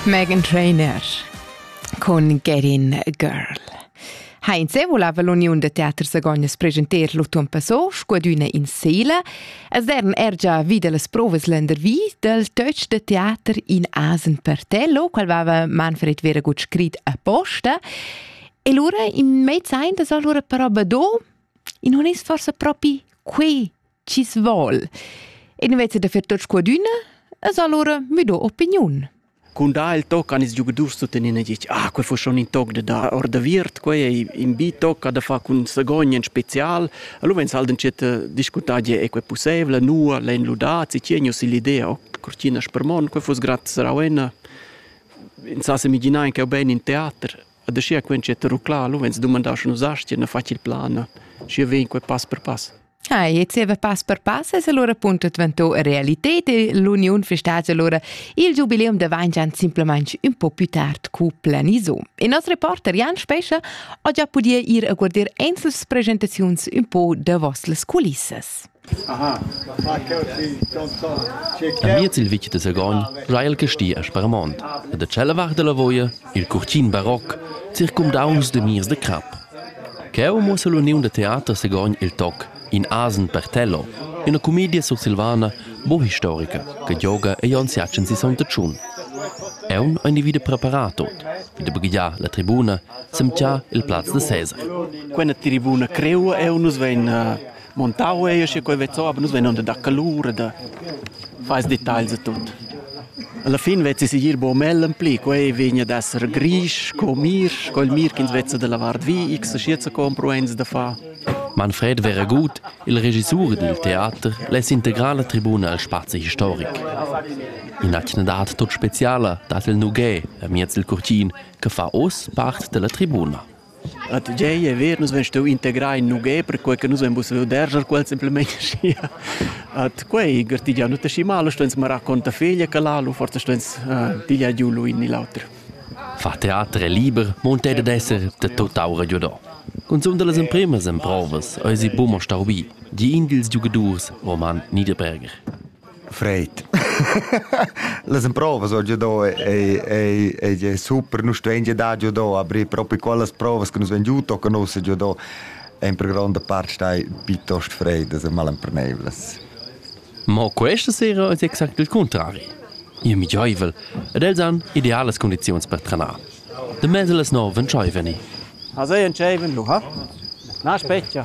Megan Trainer cun Getting Girl. Ha in se voleva l'uniun de teater Sagognas presentar l'autunn passò scudüna in Seele, as dern er già vida las provas lendervi del töch de teater in Asen Pertello, qual vava Manfred Veragut scrit apposta, e lura in mezz ein das allora però badò, in honest forse propi quei chi's vol. E invece da fer tots quadüna, es allora müdo opiniun. Cun da il toc an ils giugadurs tuttenina dic, ah, quel fu schon in toc da da or da viert, quei ei in bi toc da fa cun sagogn in special. Allora vens halt dschet discutar die e quei possible, nua l'ein ludat, si tieni si l'idea, oh, cortina spermon, quei fus grat sarauena. In sa se migina in che ben in teater. A da scia quen c'è rucla, allora vens dumandar schon usastie, na facil plan. Scia vegn quei pass per pass. Ah, e zieva pass per pass es allura appunto dvantò realited e l'uniun festats allura il giubileum da Vaingian simplamaing ün po più tard cu planiso. E nos reporter Jan Spescha ho già pudia ir a guardir ensels presentaziuns ün po davos las culissas. Aha, Amiez il vitg de Sagogn già il casti a Sparmont e da tschella vart della Voia il curtin baroc circumdaungs de mirs de crap. Cheu muossa l'uniun da teater Sagogn il toc In asen per Tello, üna cumedia sursilvana bo historica che gioga ei ons jatschen si sogn da tschun. Aun ha individu preparà tot, vi da baghegiar la tribuna, semtgiar il plaz da Cesar. Quella tribuna creua eu nus vein Montau ei sche quei vezzo, aber nus vein onda da calur e da fais detagls e tut. Alla fin vezzi sigir bo mellen pli, quei vegna ad esser grisch co mirsch, quel mir ch'ins vezza dalla vart vi, x schieza compro eins da fa. Manfred wäre gut, il regissur dil teater less integrar la tribuna al spazi historic. In'atgna dat tut speciala dat il Nugè, amiez il curtin, che fa oz part della tribuna. A tgei e ver nus vein stau integrai in nughè perquei che nus vein pussau derscher quels simplemein aschia. Ad quei gartigiau nus aschi mal, stueins mo raccontar feglia che l'alu, forsa stueins eh, pigliar giu lu in ni l'auter. Fa teater è liber, monte ed esser de totau ragiodò. Cunzunt las empremas emprovas eisi buca stau bi, di in dils giugadurs Roman Niederberger. Fred. Las emprovas ho già do ei ei ei è super, nus stuein già dar già do, aber proprio quellas provas che nus han giù tocca nus già do en per grande parte stai piuttosto fred, das mal empernevles. Ma questa sera è exact il contrario. Io mi gioivel ed els han idealas condizioni per trenar. De mese les no vencei veni. Also entscheiven lu, ha? Na specchia.